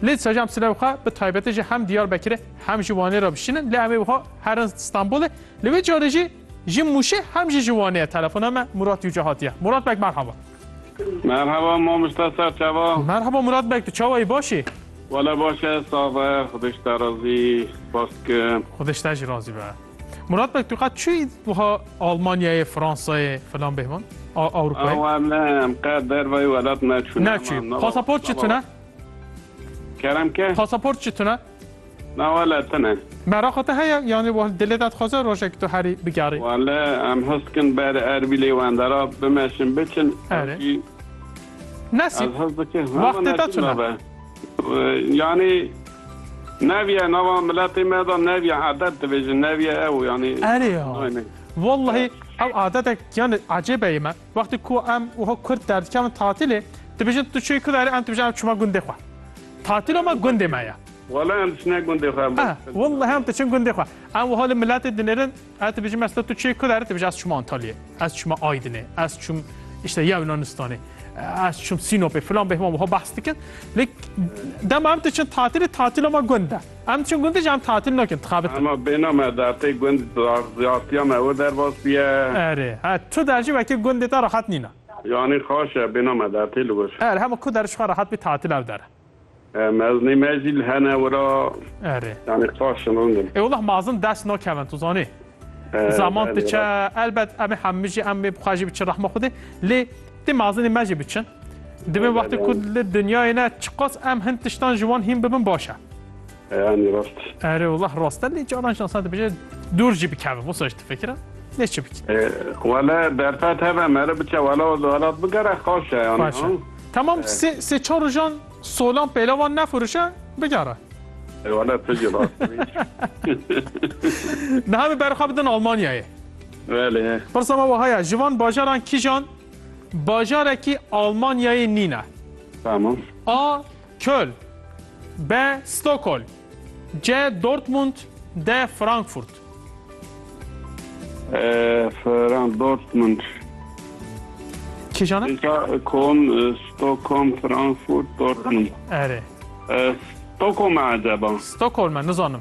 Lê saja em silev xwe bi taybetî ji hem Diyarbekirê hem ji Wanê re bişînin lê em ê wiha herin Stenbolê. Li vê carê jî ji Mûşê hem jî ji Wanê ye telefona me Murat Yûce hatiye. Murat beg merhaba. Merhaba mamosta ser çava? Merhaba Murat beg tu çawa yî baş î? Wala baş e sax e xwedê ji te razî spas dikim. Xwedê ji te jî razî be. Murat beg tu qet çûyî wiha Almanyayê, Fransayê filan bêhvan? A Ewropayê? Ew em ne em qet dervayê welat neçûn. Neçûyî. Pasaport çi tune? Kerem ke. Pasaport çi tune? Na wele tune. Meraqa te heye yanî wal dilê de dixwaze rojek tu herî bigerî? Wale em his dikin berê Erbîlê û Endera bimeşin biçin. Erê. Nesîb. Ez his dikim. Wextê te tune. Yanî neviye nava miletê me de neviye adet dibêjin neviye ew yanî. Erê ya. Wellahî ew adetek yanî ecêb e yê me. Wextê ku em wiha kurt derdikevin tatilê, dibêjin tu çûyî ku derê em dibêjin em çûma gundê xwe. Tatilo me gundê me ye. Wala em diçine gundê xwe. Em Ah, bes wallahi em diçin gundê xwe. Em wiha li miletê dinêrin, ez dibêjim ez te tu çûyî ku derê dibêjin ez çûma Antalyayê, ez çûma Aydinê, ez çûm îşte ya Yunanistanê, ez çûm Sînopê filan bêhma wiha behs dikin. Lê dema em diçin tatilê, tatilo me gund e. Em diçin gundê jî em tatil nakin, dixebitin. Hema bêhna me dertê gund ziyartiya me wir derbas bûye. Erê, he tu der jî wekî gundê te rehet nîn e. Yanî xaş e bêhna me dertê li wir. Erê, hema ku der ji xwe rehet bî tatil ew der e. E, mezinê me jî li hene wir a. Erê. Yanî xaş in rind in. Ê welleh mezin dest nakevin tu zanî. E, Zaman belê diçe, rast. elbet em ê hemû jî em ê bi xwe jî biçin rehma Xwedê lê, Tê mazinê me jî biçin. Divê wextê ku li dinyayê ne çiqas em hin tiştan ji wan hîn bibin baş e. Eyanî rast. Erê wallah rast e lê caran jî insan dibêje dûr jî bikeve wisa jî difikire. Lê çi bikî? Wele derfet hebe me re biçe wele o welat bigere xweş e yanî. Xweş e. Tamam sê sê çar rojan solan pêlavan nefirûşe bigere. Wele tu jî rast. Niha min berxwe bidin Almanyayê. Belê. Pirsa me wiha ye, ji van bajaran kijan bajarekî Almanyayê nîne? Tamam. A. Köln B. Stockholm C. Dortmund D. Frankfurt Ee, Fran Dortmund. Kijan e? Pêka Köln, e, Stockholm, Frankfurt, Dortmund. Erê. E, Stockholm e acaba? Stockholm e nizanim.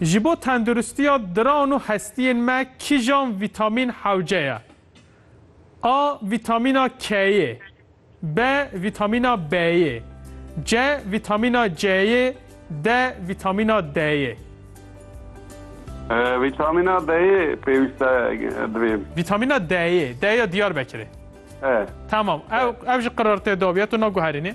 Ji bo tenduristiya diran û hestiyên me kîjan vîtamîn hewce ye? A. Vîtamîna K'yê B. Vîtamîna B'yê C. Vîtamîna C'yê D. Vîtamîna D'yê. Vîtamîna D'yê pêwîste divê. Vîtamîna D'yê D ya Diyarbekirê. Tamam ew ew ji qirartê de bûye tu naguherînî.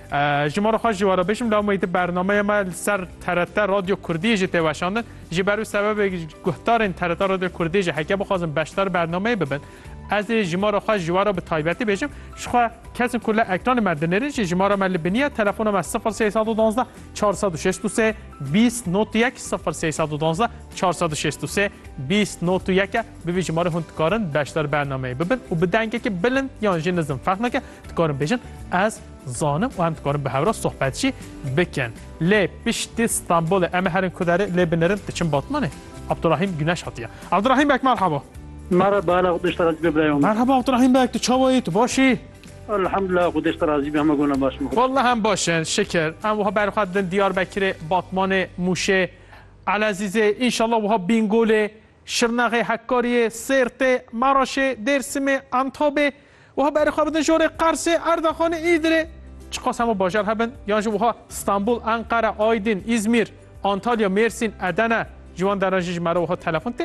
Ji mala xwe ji we re bêjim lawmeyî di bernameya me li ser TRT Radyo Kurdiyê jî tê weşandin. Ji ber wî sebebê guhdarên TRT Radyo Kurdiyê jî heke bixwazin beşdar bernameyê bibin. Ez ê ji mala xwe ji we re bi taybetî bêjim. Ji xwe kesin ku li ekranê me dinêrin jî ji me re me li biniye telefona me 0312 463 20 not 1 0312 463 20 not 1 e. Bi vî ji me re hûn dikarin beşdar bernameyê bibin û bi dengekî bilind yan jî nizim fehmeke dikarin bêjin ez zanim û em dikarin bi hewra sohbet jî bikin. Lê piştî Stenbolê em ê herin ku derê lê binirin diçin Batmanê. Abdurahîm Guneş hatiye. Abdurahîm bek merhaba. Merhaba ala xwedêş te razî be birayê min. Merhaba Abdurahîm bek tu çawa yî tu baş î? Elhamdulillah xwedêş te razî be hema gona baş in. Wallah em baş in şikir. Em wiha berê xwe didin Diyarbekirê, Batmanê, Mûşê, Elezîzê, înşallah wiha Bîngolê, Şirnexê, Hakkari'yê, Sêrtê, Maraşê, Dêrsimê, Antobê, wiha berê xwe bidin ji orê Qarsê, Erdaxanê, Îdirê. Çiqas hemû bajar hebin yan jî wiha Stenbul, Enqere, Aydin, Îzmîr, Antalya, Mêrsîn, Edene ji wan deran jî ji me re wiha telefon tê